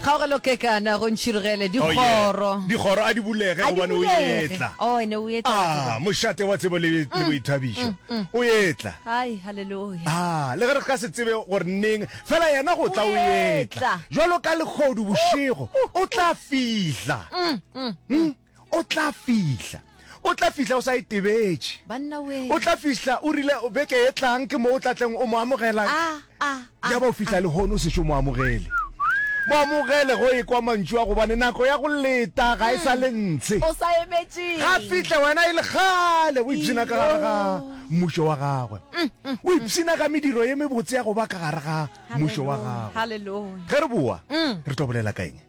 Kgaogelo ke kana go ntšhirgele Oh, yeah. dikgoro. Dikgoro a di bulege A di gobane o bulege. etla. Oh, ene o etla. Ah, mošate wa tsebo le le boithabišo. O etla. Hai, haleluya. Ah, le ge re ka se tsebe gore neng, fela yena go tla o O etla. etla. Jwalo ka lekgodu bošego, o tla fihla. Mm. o tla fihla o tla fihla o sa itebetše o tla fihla o rile beke e tlang ke mo o tlatleng o mo amogelang ah, ah, ah, ya ba o fihla lehono o sešo mo amogele mo amogele go e kwa mantšu a gobane nako ya go leta ga e sa le ntshe ga fihle wena e le gale o ipshina ka gare ga mmušo wa gagwe mm, mm, o mm. ipshina ka mediro ye mebotse ya go ba ka gare ga mmušo wa gagwe ge re boa re tlo bolela ka eng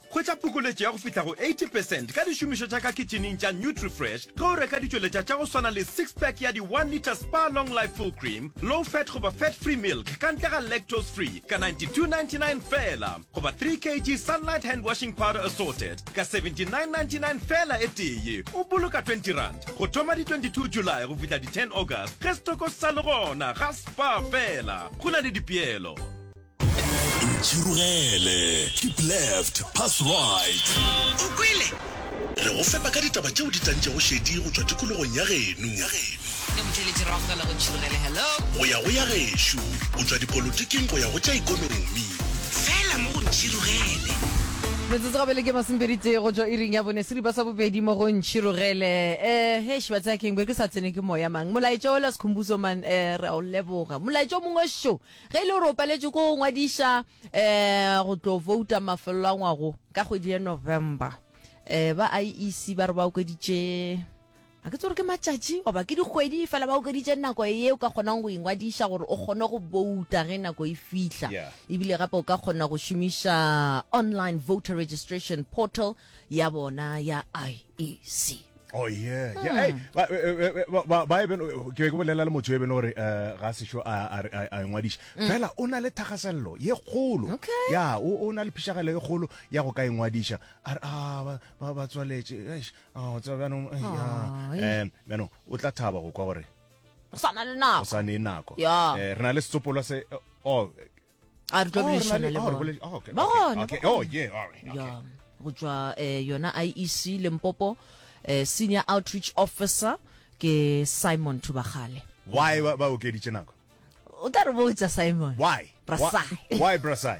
Hwetša phokoletšo ya go fihla go 80 percent ka dišomišo tša ka kitšhineng tša NutriFresh ge o reka ditšweletša tša go swana le six pack ya di one litre Spar Long Life Full Cream, Low Fat goba Fat Free Milk ka ntle ga Lactose Free ka 92.99 feela goba three kg Sunlight Hand Washing Powder Assorted ka 79.99 feela e tee. O boloka twenty rand go thoma di 22 July go fihla di ten August ge setoko se sa le gona. Ga Spar fela, go na le dipeelo. Ntšhirogele, keep left, pass right. O kwele? Re go fepa ka ditaba tšeo di tantšego šedi go tšwa tikologong ya geno. Ke motšweletši Ragfela go Ntšhirogele. Hello. Go ya go ya gešo, go tšwa dipolotiking go ya go tša ikonomi. Fela mo go Ntšhirogele. Metsotso ga bele ke masomepedi tee go tšwa iring ya bone seripa sa bobedi mo go Ntšhirogele. Um hesh batsaya keng be ke sa tsene ke moya mang molaetša ola sekhumbuso man um re a o leboga molaetša o mongwe šo. Ge e le gore o paletše ko go ngwadiša um go tlo vouta mafelelo a ngwago ka kgwedi ya November, um ba IEC ba re ba okeditše ga ke tse gore ke matšatši goba ke dikgwedi fela ba okeditše nako ye o ka kgonang go ingwadiša gore o kgone go bouta ge nako e fihla Yeah. ebile gape o ka kgona go šomiša online voter registration portal ya bona ya IEC Oh yeah. Hmm. Yeah. Hey, ba eh, eh, eh, ba ba ba even ke ke bolela le motho e bene gore ga se sho a a a ngwadiša. Hmm. Fela o na le thagasello ye kgolo. Okay. Ya o o na le phishagelo ye kgolo ya go ka ingwadiša. A re ah ba ba ba tswaletse. Eish. Ah o tswa bana ya. Eh bana o tla thaba go kwa gore. O sana le nako. O sana le nako. Eh re na le setsopolwa se oh a re tlo oh, boledišana le oh, bona oh, ba gona go tswa eh, yona iec lempopo eh, senior outreach officer ke simon thubagale why ba okeditše nako o tla re botsa simon why why brasai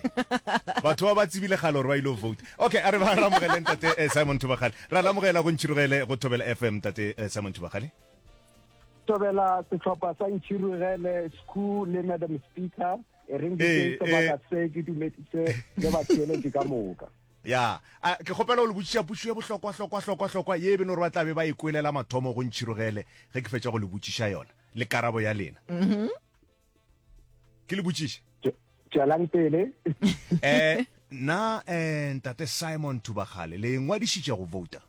batho ba ba tsebile gale gore ba ile vote okay a re ba ramogele ntate eh, simon thubagale ra lamogela go ntšhirogele go thobela fm tate eh, simon thubagale tobela setlhopha sa ntšhirogele scu le madam speaker e reng ke eh, sebaka eh. se ke dumedise le batheeletše ka moka ya ke kgopela go le botšiša pušo ye bohlokwa hlokwa hlokwa hlokwa ye e beno gore ba tlabe ba e kwelela mathomo go ntšhirogele ge ke fetša go le botšiša yona le karabo ya lena mm-hmm. ke le botšiše tšwelang pele eh na eh ntate simon thubagale le ngwadišitše go vouta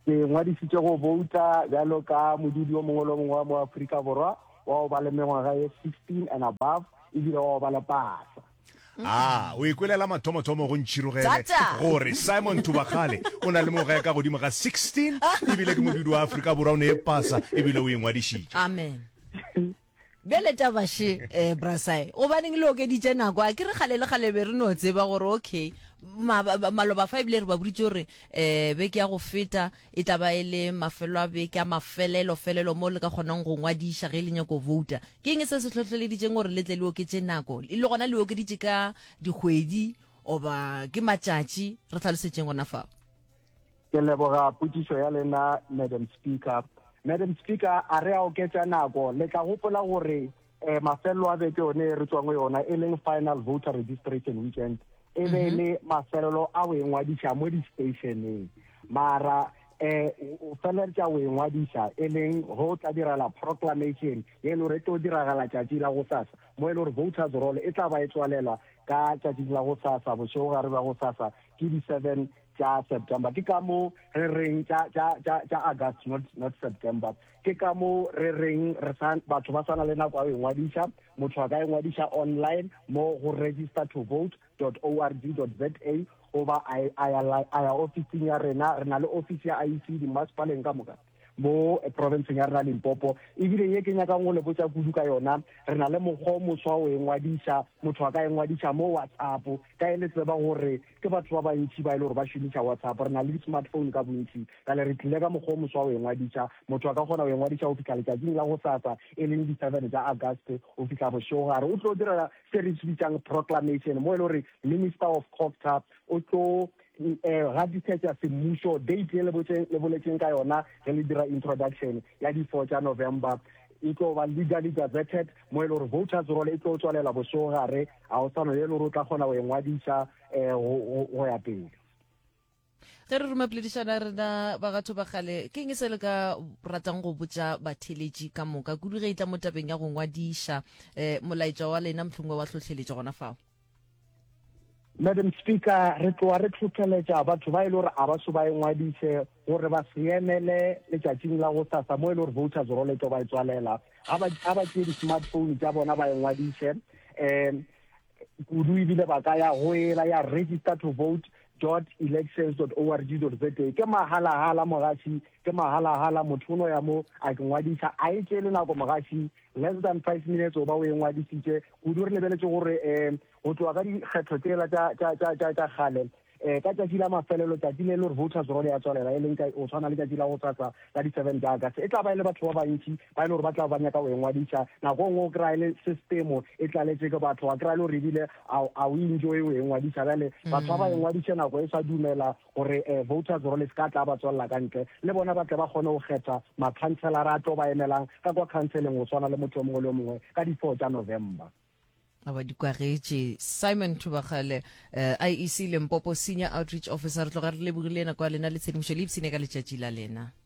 ke ngwadišitše go vouta bjalo ka modudi o mongwe le o mongwe wa mo aforika borwa wa go ba le mengwaga ye 16 and above ebile wa go ba le pasa A o ikwelela mathomothomo go ntšhirogele gore Simon Thubakgale o na le moga ya ka godimo ga 16 ebile ke mobidi wa Afrika Borwa o ne e pasa ebile o ingwadišitše. Amen. Bjale tabaše eh, brasai gobaneng le okeditše nako a ke re kgale le kgale be re no tseba gore okay maloba fa ebile re ba boditse gore um beke ya go feta E tla ba e le mafelo a beke a mafelelo felelo moo le ka kgonang go ngwadiša ge le nyaka go bouta. Ke eng se se hlohleleditšeng gore le tle le oketše nako? Le gona le e okeditše ka dikgwedi goba ke matšatši? Re hlalosetšeng gona fao. Ke leboga potšišo ya lena, Madam Speaker. Madam Speaker, a re a oketša nako, le tla gopola gore Eh, mafelelo a beke one e re tswang go yona e leng final voter registration weekend e be e le mafelelo a go engwadiša mo di-stationeng mara eh o feleletša go engwadiša e leng go tla direla proclamation ye e le gore e tlo diragala tšatši la go sasa mo e le gore voters roll e tla ba e tswalelwa ka tšatšing la go sasa bošego gare ba go sasa ke di-seven tša september ke ka moo re reng tša tša- tša- tša august not not september Ke ka moo re reng re sa, batho ba sa na le nako ya go ingwadiša, motho a ka ingwadiša online mo go registertovote dot org dot za goba a a ya, a ya ofising ya rena. Re na le ofisi ya IEC dimmasepaleng ka moka mo profenseng ya rena Limpopo. E bile ye ke nyakang go le botša kudu ka yona, re na le mokgwa o moswa wa go ingwadiša, motho a ka ingwadiša mo WhatsApp ka ge le tseba gore Ke batho ba bantši ba e le gore ba šomiša WhatsApp. Re na le di-smartphone ka bontši. Bjale re tlile ka mokgwa o moswa wa go engwadiša. Motho a ka kgona go engwadiša go fihla letšatšing la gosasa, e leng di seven tša August, go fihla bošegogare. O tlo dira se re se bitšang proclamation, mo e le gore Minister of Cogta o tlo gatisetša semmušo date ye le boletšeng ka yona ge le dira introduction ya di four tša November. E tlo ba legally gazetted. mo e le gore voters roll e tlo tswalela bosogare ga o sano ye e le gore o tla kgona go engwadisa um go ya pele ge re ruma poledišana rena ba gatho ba gale ke eng se le ka ratang go botša batheletši ka moka kudu ge e tla mo tabeng ya go ngwadiša um molaetša wa lena mohlongwe wa tlhotlheletša gona fao Madam Speaker, re tloa re tlhotlheletša batho ba e le gore a ba so ba engwadiše gore ba se emele letšatšing la go sasa mo e le gore voters roll e tlo ba e tswalela a ba tšee di-smartphone tša bona ba engwadiše um kudu ebile ba ka ya go ela ya register to vote dot elections dot org dot za ke magalahala mogaši ke magalahala motho o no ya mo a ke ngwadiša a e tšee le nako mogaši Less than five minutes o ba o e ngwadisitše kudu. Re lebeletše gore um go tloga ka dikgetho tsela tša kgale um ka tšatši la mafelelo tšatši le le gore voters role ya tswalela e leng ka o tshwana le tšatši la go tsatsa ka di-seven tša august e tla ba e le batho ba bantši ba e le gore ba tla ba nyaka go e ngwadisa nako ngwe o kry-a le systemo e tlaletse ke batho wa kry-a le gore ebile a o enjoy o e ngwadisa bjale batho ba ba e ngwadise nako e sa dumela gore voters roll e se ka tla ba tswalela ka ntle, le bona ba tle ba kgone go kgetha makhanselara a tlo ba emelang ka kwa khanseleng go swana le motho yo mongwe le yo mongwe ka di four tša November. a ba di kwagetše simon thubagale um eh, iec lempopo senior outreach officer re tloga re lebogile nako ya lena le tshedimošo le ipsene ka letšatši la lena